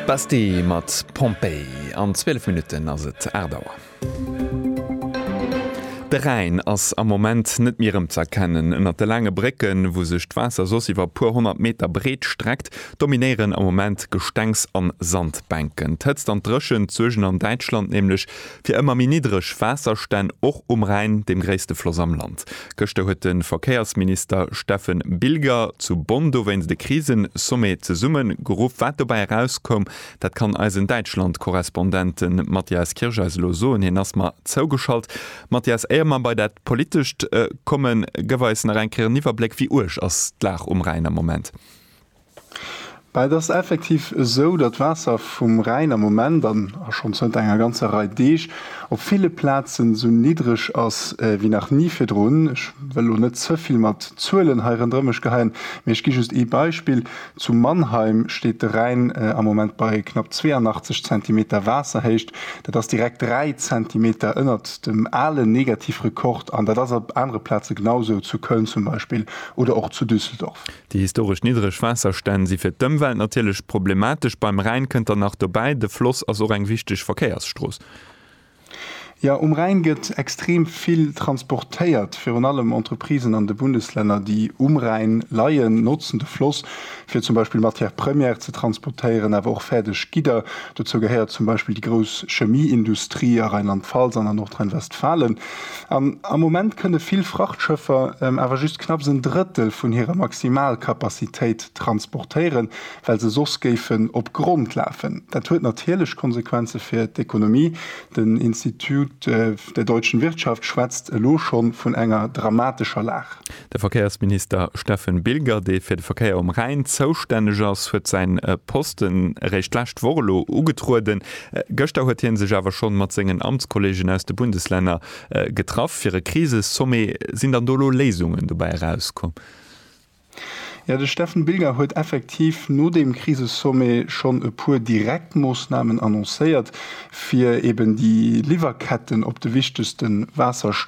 Basti mat Pompeii. An 12 Minutten ass et 8 Auer. De Rhäin ass am Moment net méi erëmz'erkennen. Ënnert de laange Brécken, wou sech d'Waasser soss iwwer e puer honnert Meter breet streckt, dominéieren am Moment Gestengs an Sandbänken. D'Hëtzt an d'Dréchent suergen an Däitschland nämlech Fir ëmmer méi niddreg Waasserstänn och um Rhäin, deem gréisste Floss am Land. Gëschter huet de Verkéiersminister Steffen Bilger zu Bonn dowéinst e Krisensommet zesumme geruff. Wat dobäi erauskoum, dat kann eisen Däitschlandkorrespondente Matthias Kirsch eis elo soen. Hien ass mer zougeschalt. Matthias, éier mer bei dat Politescht kommen, gëff eis nach eng Kéier en Iwwerbléck, Wéi uerg ass d'Lag um Rhäin am Moment? Mä et ass effektiv esou, datt d'Waasser vum Rhäin am Moment, an a schonn zënter enger ganzer Rei Deeg, op ville Plazen esou niddreg ass wéi nach ni virdrun. Ech wëll elo net ze vill mat Zuelen hei rënderëm mech geheien, mee ech gi just ee Beispill, Zu Mannheim steet de Rhäin am Moment bei knapp 82 Zentimeter Waasserhéicht. Dat ass direkt dräi Zentimeter ënnert dem alen Negativrekord. An dat ass op anere Plaze genau esou, zu Köln zum Beispill oder och zu Düsseldorf. Déi historesch niddreg Waasserstänn si fir d'Ëmwelt natierlech problematesch. Beim Rhäin kënnt dann nach dobäi, de Floss ass och eng wichteg Verkéiersstrooss. Jo, um Rhäin gëtt extrem vill transportéiert. Virun allem Entreprisen an de Bundeslänner, déi um Rhäin leien, notzen de Floss, fir zum Beispill Matière première ze transportéieren, awer och fäerdeg Gidder. Dozou gehéiert zum Beispill déi grouss Chemieindustrie a Rheinland-Pfalz an a Nordrhein-Westfalen. Am Moment kënne vill Frachtschëffer awer just knapps en Drëttel vun hirer Maximalkapazitéit transportéieren, well se soss géifen op Grond lafen. Dat huet natierlech Konsequenze fir d'Ekonomie. Den Institut der Deutschen Wirtschaft schwätzt elo scho vun enger dramatescher Lag. De Verkéiersminister Steffen Bilger, dee fir de Verkéier um Rhäin zoustänneg ass, huet säi Posten eréischt d'lescht Woch elo ugetrueden. Gëschter huet hie sech awer schonn mat sengen Amtskollegen aus de Bundeslänner getraff fir e Krisesommet. Sinn dann do elo Léisungen dobäi erauskomm? Jo, de Steffen Bilger huet effektiv no deem Krisesommet schonn e puer direkt Moossnamen annoncéiert, fir eeben déi Liwwerketten op de wichtegste Waasserstroosse